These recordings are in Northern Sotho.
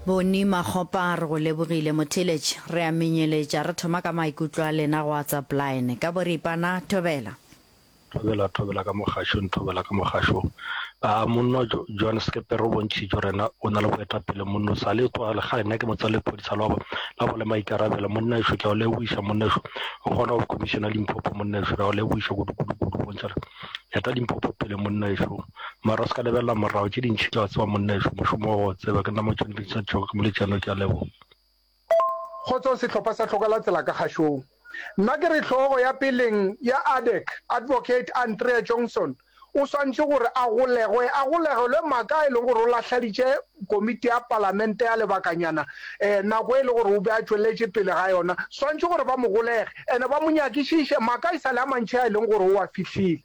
Boni Makgopa re go lebogile Motheletši, re a menyeletša re thoma ka maikutlo a lena go WhatsApp line ka boripana. Thobela. Thobela, thobela ka mogašong, thobela ka mogašong. A monno Jo, Joan Sekepe re o bontšhitše rena o na le boetapele monno sa le tloga le kgale nna ke motswalle lephodisa la go la go le maikarabelo monna ešo ke a o lebogiša monna ešo o kgona go commissiona Limpopo monna ešo re a o lebogiša kudu kudu kudu bontšha re eta Limpopo pele monna ešo mara o se ka lebelela morago tše dintšhi tla tseba monna ešo mošomo wa go tseba ke nna mo tšhwanedi tša tšhogo ke molejano ke a leboga Kgotso sehlopha sa Hloka la Tsela ka kgašong. Nna ke re hlogo ya peleng ya ADEC, Advocate Andrea Johnson, o swantše gore a golegwe, a golegelwe maka a e lego gore o lahladitše komiti ya palamente ya lebakanyana um nako e le gore o be a tšweletše pele ga yona. Swantše gore ba mo golege and ba mo nyakišiše maka e sa le a mantši a e leng gore o a fihlile.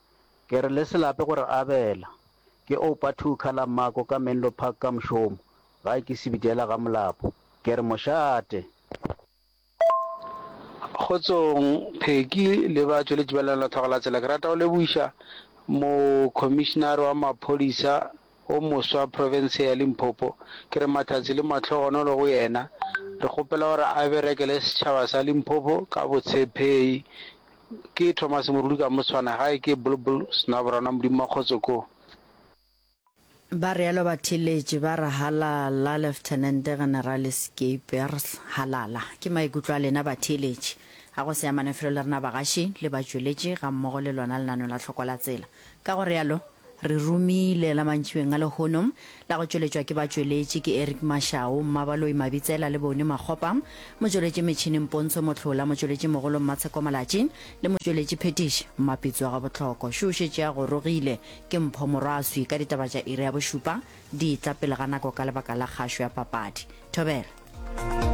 Ke re le se lape go re abela. Ke oupa two colour mmako ka Menlo Park ka mošomo, gae ke Sebidela ga Molapo. Ke re mošate. Kgotsong Pheki le ba tšweletši ba Lenanelotlhago la Tsela, ke rata go lebogiša Mo-Commissioner wa Maphodisa o moswa profense ya Limpopo, ke re mahlatse le mahlogonolo go yena, re kgopela gore a berekele setšhaba sa Limpopo ka botshepheyi. Ke Thomas Moruli ka mo tshwana, gae ke Bulbul Snabrana Modimo wa kgotso ko. Ba realo ba theletše ba re, Halala, Leftenente Generale Skeepers, halala. Ke maikutlo a lena batheeletši. Ga go se amane felo le rena bagaši le batšweletši gammogo le lona lenaneo la Tlhokola Tsela. Ka go realo, Re romile la mantšibeng a lehono, la go tšweletšwa ke batšweletši, ke Eric Mashau, Mmabaloi Mabitsela le Bony Makgopa, motšweletši metšhining Pontsho Mohlola, motšweletši mogolo Mmatsheko Malatši le motšweletši phetiši Mmapitso wa Gabotlhoko. Šo o šetše a gorogile ke Mpho Morwaswi ka ditaba tša iri ya bošupa, di tla pele ga nako ka lebaka la kgašo ya papadi. Thobela.